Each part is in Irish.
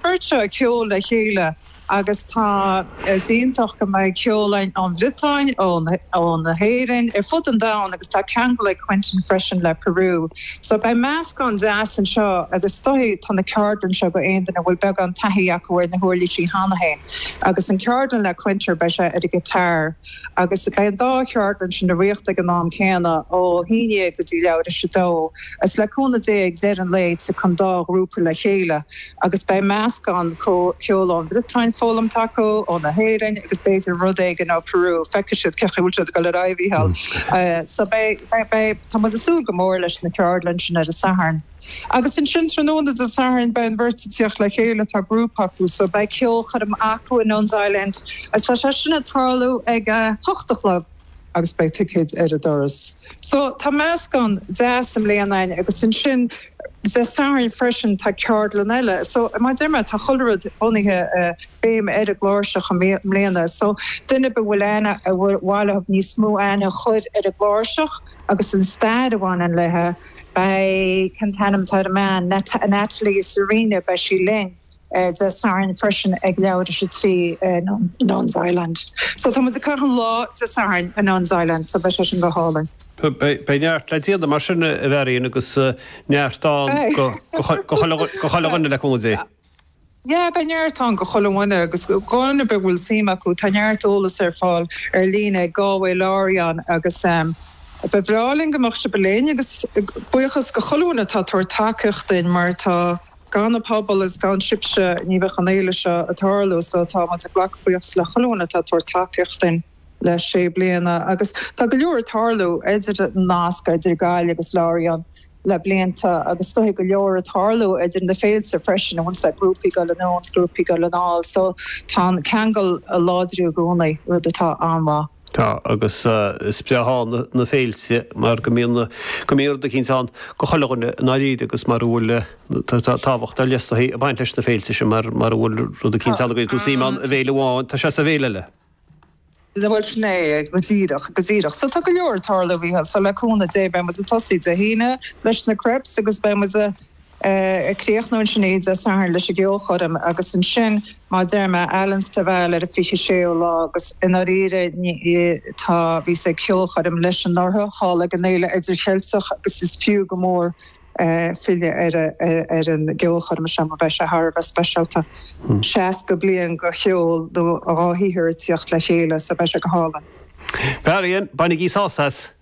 Cuirtear ceol le chéile agus tá. Is iontach go mbeidh ceol ón Bhriotáin, ón hÉirinn, ar fud an domhain agus tá ceangal ag Quentin freisin le Peru so beidh meascán deas anseo agus is dóigh tá na ceardlann seo go aon duine a bhfuil beagán taithí acu ar na huirlísí cheana féin agus an cheardlann le Quentin beidh sé ar an guitar agus beidh an dá cheardlann sin ag rith ag an am céanna ó haon déag go dtí leathuair tar éis a dó agus le cúnamh Dé ag deireadh an lae tiocfaidh an dá ghrúpa le chéile agus beidh meascán ceol ón Bhriotáin foghlamtha acu, ón hÉirinn agus b'fhéidir rud éigin ó Peru, feicfidh sé cén chaoi a bhfuil siad ag dul ar aghaidh a Mhícheáil. So beidh, beidh, tá muid ag súil go mór leis na ceardlann sin ar an Satharn. Agus ansin tráthnóna Dé Sathairn beidh an bheirt ag tíocht le chéile, tá grúpa acu, so beidh ceolchoirm acu i Nun's Island agus tá sé sin ag tarlú ag a hocht a chlog. agus beidh ticéid ar an doras. So, tá meascán deas i mbliana ann agus ansin Dé Sathairn freisin tá ceardlann eile. So, mar a deir mé, tá chuile rud bunaithe, béim ar an gcláirseach i mbliana. So, duine ar bith a bhfuil aithne, ar mhaith leo níos mó aithne a chur ar an gcláirseach agus an stair a bhaineann léi, beidh, cén t-ainm atá ar an mbean, Natalie Surina, beidh sí linn. Dé Sathairn freisin ag leathuair tar éis a trí i Nuns Island. So tá muid ag caitheamh an lá Dé Sathairn i Nuns Island so beidh sé sin go hálainn. Beidh neart le déanamh mar sin, a Mharian, agus neart ann go chuile dhuine le cúnamh Dé. Yeah, beidh neart ann go chuile dhuine agus duine ar bith a bhfuil suim acu, tá neart eolas ar fáil ar líne ag Galway Lorient agus ba bhreá linn go mbeadh sibh linn agus buíochas go chuile dhuine atá ag tabhairt tacaíocht dúinn mar tá. Gan an pobal is gan sibhse ní bheadh an fhéile seo ag tarlú so tá muid ag glacadh buíochas le chuile dhuine atá ag tabhairt tacaíocht dúinn le sé bliana agus tá go leor ag tarlú idir nasc idir Gaillimh agus Lorient le blianta agus is dóigh go leor ag tarlú idir na féilte freisin bíonn siad grúpaí ag goil anonn is grúpaí ag goil anall so tá an ceangal ag láidriú i gcónaí rud atá an-mhaith. Tá, agus is breá iad na féilte mar go mbíonn, go mbíonn rud eicínt ann go chuile dhuine i ndáiríre agus mara bhfuil, tá tábhacht ar leith is dóigh ag baint leis na féilte sin mar, mara bhfuil rud eicínt ann go do shuim ann i bhféile amháin, tá sé sa bhféile eile. Bhuel sin é, go díreach, go díreach. So tá go leor ag tarlú oíche, so le cúnamh Dé beidh muid ag tosaí Dé hAoine leis na Crepes agus beidh muid a. ag críochnú ansin Dé Sathairn leis an gceolchoirm agus ansin mar a deir mé Alan Stivell ar an 26ú lá agus i ndáiríre tá, bhí mé ag ceolchoirm leis anuraidh thall ag an Fhéile Idircheilteach agus is fiú go mór filleadh ar an gceolchoirm seo mar beidh sé thar a bheith speisialta, 60 bliain de cheol nó dá shaothar ag tíocht le chéile so beidh sé go hálainn. Marian, Bainigí sás as!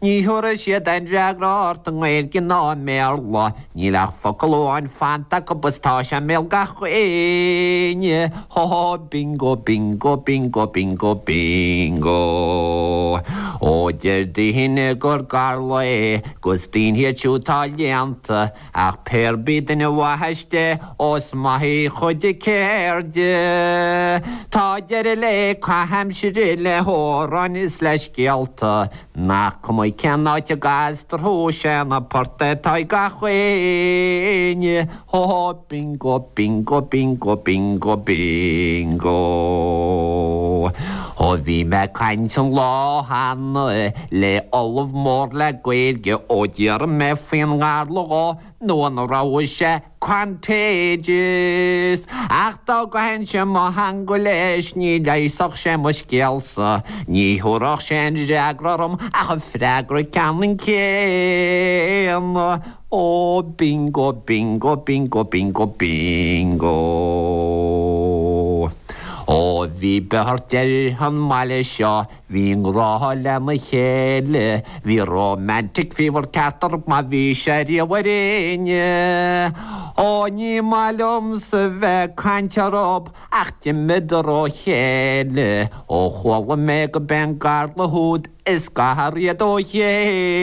Ní thabharfaidh siad aon fhreagra ort i nGaeilge ná i mBéarla, níl ach focal amháin fanta acu is tá sé i mbéal gach éinne, hó hó bingo bingo bingo bingo bingo! Ó deir daoine gur garla é, 'gus daoine iad siúd atá léannta, Ach pér bith duine mhaitheas de, ós maith í chuid a ceirde, tá deireadh le caitheamh aimsire, le hamhráin is le scéalta, nach cuma cén áit a gcastar thú, 'sé an port é atá ag gach éinne, hó hó bingo bingo bingo bingo bingo. Ó bhí mé ag caint an lá cheana le ollamh mór le Gaeilge ó d'iarr mé faoin ngarla dhó nó an raibh sé contagious? Ach dá gcaithfinnse mo theanga leis ní leigheasfadh sé mo scéalsa, ní thiúrfadh sé aon fhreagra orm ach an freagra ceannann céanna, Ó bingo, bingo, bingo, bingo, bingo! Ó bhí beirt ar an mbaile seo! Bhí i ngrá lena chéile, bhí romantic fever ceart orthub má bhí sé riamh ar éinne. Ó, ní maith liomsa bheith ag caint orthub ach d'imíodar ó chéile. Ó chuala mé go b'é an garla úd a scar iad ó chéile.